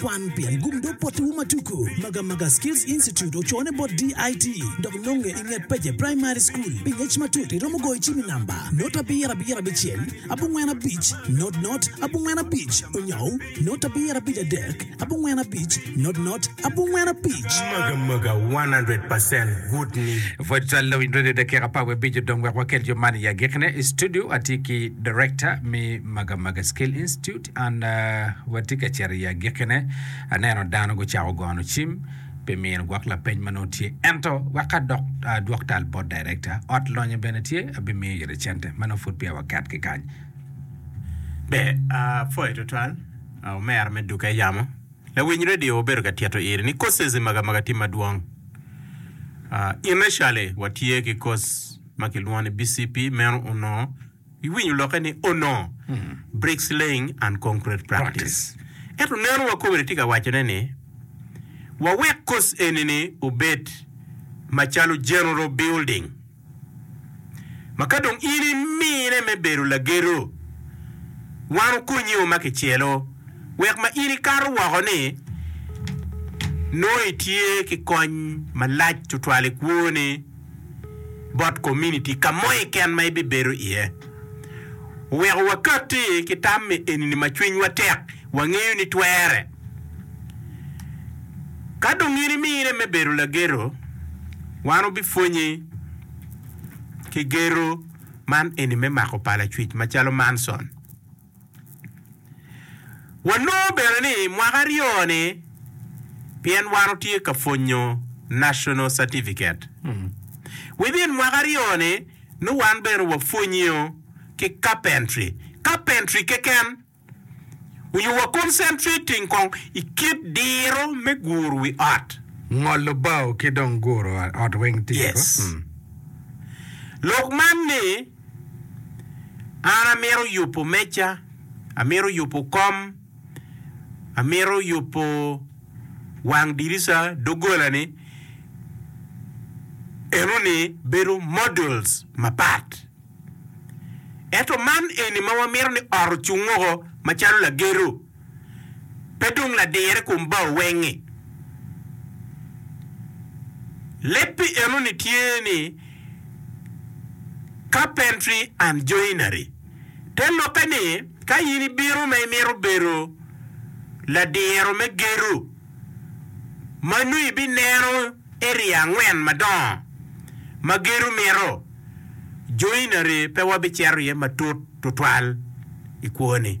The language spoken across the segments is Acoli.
Kwan pien gum dog potiwu ma tuku. Magamaga Skills Institute ocone bot DIT dok nonge i nget Peje Primary School. Pi ngec matut iromo goyo cim i namba not abiro abiro abicel abongwen abic not not abongwen abic onyou not abiro abic adek abongwen abic not not abongwen abic. Magamaga 100 percent good ni. Pwod twal lawiny radio dakika apar wiye abic odong wek wakel jo man i agikine i studio. Atye ki Director me Magamaga Skills Institute. An watye ka cito i agikkine, aneno dano gucako gono cim pi mino gwok lapeny ma nongo tye. Ento, wek adok adwok tal bot darekta, ot lonyo bene tye, abimiyo ite cente. Ma nongo pud peya waket ki kany. Ber. Apwoyo tutwal, omera me duka eyamo. Lawiny redio obedo ka tito iri ni courses i Magamaga tye madwong. Initially watye ki course ma kilwongo ni BCP, meno onongo. Iwinyo lokke ni onongo bricks laying and concrete practice. Ento neno wa kome ni tye ka waco ne ni wawek kos eni ni obed macalo general building ma ka dong in imine me bedo lagedo wan okonyi o ma kicelo wek ma in ikato woko ni nongo itye ki kony malac tutwal ikwo ni. bot kominiti ka mo keken ma ibibedo iye. Wek wakatti ki tam me enini ma cwinywa tek, wangeyo ni twere. Ka dong in imine me bedo lageto, wan wubipwonyi ki geto man eni me mako pala cwic macalo Manson. Wanongo bene ni mwaka aryo-ni pien wan otye ka pwonyo National Certificate, within mwaka aryo-ni nongo wan bene wapwonyo ki Carpentry, Carpentry keken nyo wa concentrating kong i kit diro me guru wi ot. Ngolo bao ki dong guru ot weng tye kong. Yes. Lok man ni. An amito yubo meja, amito yubo kom, amito yubo wang dirisa, doggola ni eno ni bedo models mapat. Ento man eni ma wamito ni ot ocung woko macalo lagedo pe dong ladir i kom bao weng-ngi. Leb pi enoni tye ni, carpentry and joinery. Te lokke ni, ka in ibino ma imito bedo ladiro me gedo, ma nongo ibineno area angwen madongo ma gedo mito, joinery pe wabicito iye matut tutwal i kwoni.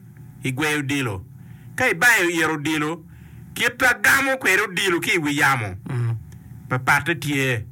i gweyo odilo. Ka ibayo it odilo, kit ma gamo kwede odilo ki i wi yamo, papatte tye.